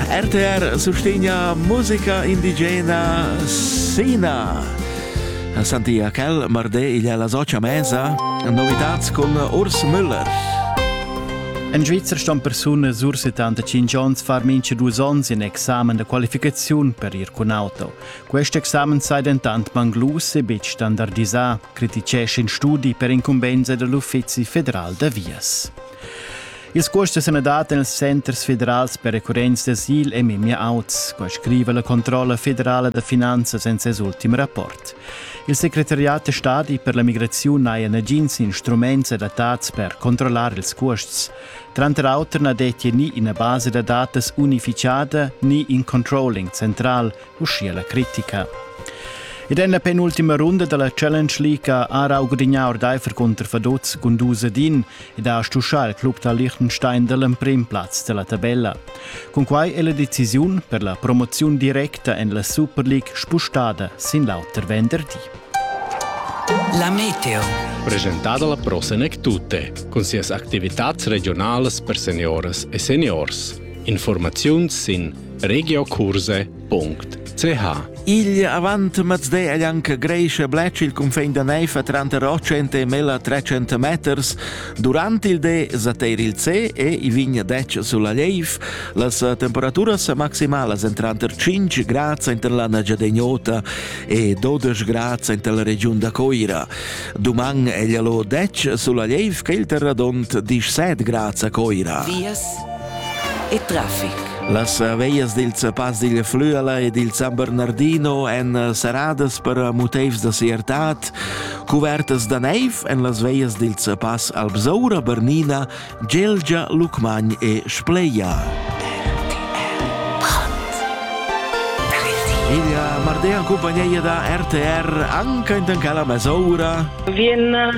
RTR sustegna musica indigena Sina. Sentia quel marde igl la socia mesa novitats cun Urs Müller. En Schweizer ston persunas ur 75 onns far mincha dus onns in examen da qualificaziun per ir cun auto. Quest examen sei dentant manglus e betg standardisà, criticescha in studi per incumbensa dell'Uffizi federal da vias. Ils cuosts sun dat nels centers federals per recurrenza d'asil e memia auts, qua scriva la controlla federala da finanzas in ses ultim rapport. Il secretariat da stadi per la migraziun n'haja nagins instruments adattats per controllar ils cuosts. Tranter auter na detti ni ina basa da datas unificada ni in controlling central uschia la critica. Ed en la penultima runda dalla Challenge League ha Rau gudignà ordaifer cunter Faduz Gunduz Din ed ha stuschà il club da Liechtenstein dall'emprim plaz dalla tabella. Cun quai è la decisiun per la promoziun directa en la Super League spustada sin l'auter venderdi. La Meteo. Presentada la Prosenec Tutte, cun sias activitads regionalas per seniores e seniors. Informaziuns sin Regiokurse.ch Igl avant mazde è anche Grecia Bletsch il confin da Neifa tranter 800 e 1300 meters. Durant il de zateir il C e i vigna dec sulla Leif. Las temperaturas maximalas en tranter 5 grad inter la Nagiadegnota e 12 grad inter la regiun da Coira. Duman è lo dec sulla Leif che il terradont 17 grad a Coira. Vias e traffic. Las veglias dil Zapass digl Flüela e dil San Bernardino èn eh, serradas per eh, motivs da siertad, cuvertas da neiv en las veglias dil Zapass Albsaura, Bernina, Gelgia, Lucmagn e Spleia. Ella Mardea en compagnia da RTR anche in Tancala Mesoura. Vien a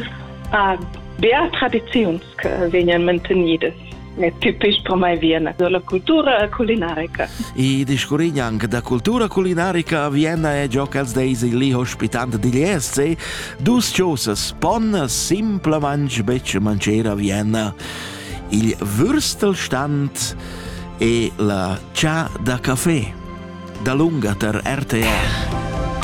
ah, Beatradiziuns che vegnan mantenidas. è tipic per mai Vienna, la cultura culinarica. I discurrin anche da cultura culinarica a Vienna è gio ch'els deis lì ospitant digl ESC dus chosas pon simplamain betg mancher a Vienna. Il Würstelstand e la chà da café. Da lunga ter RTR.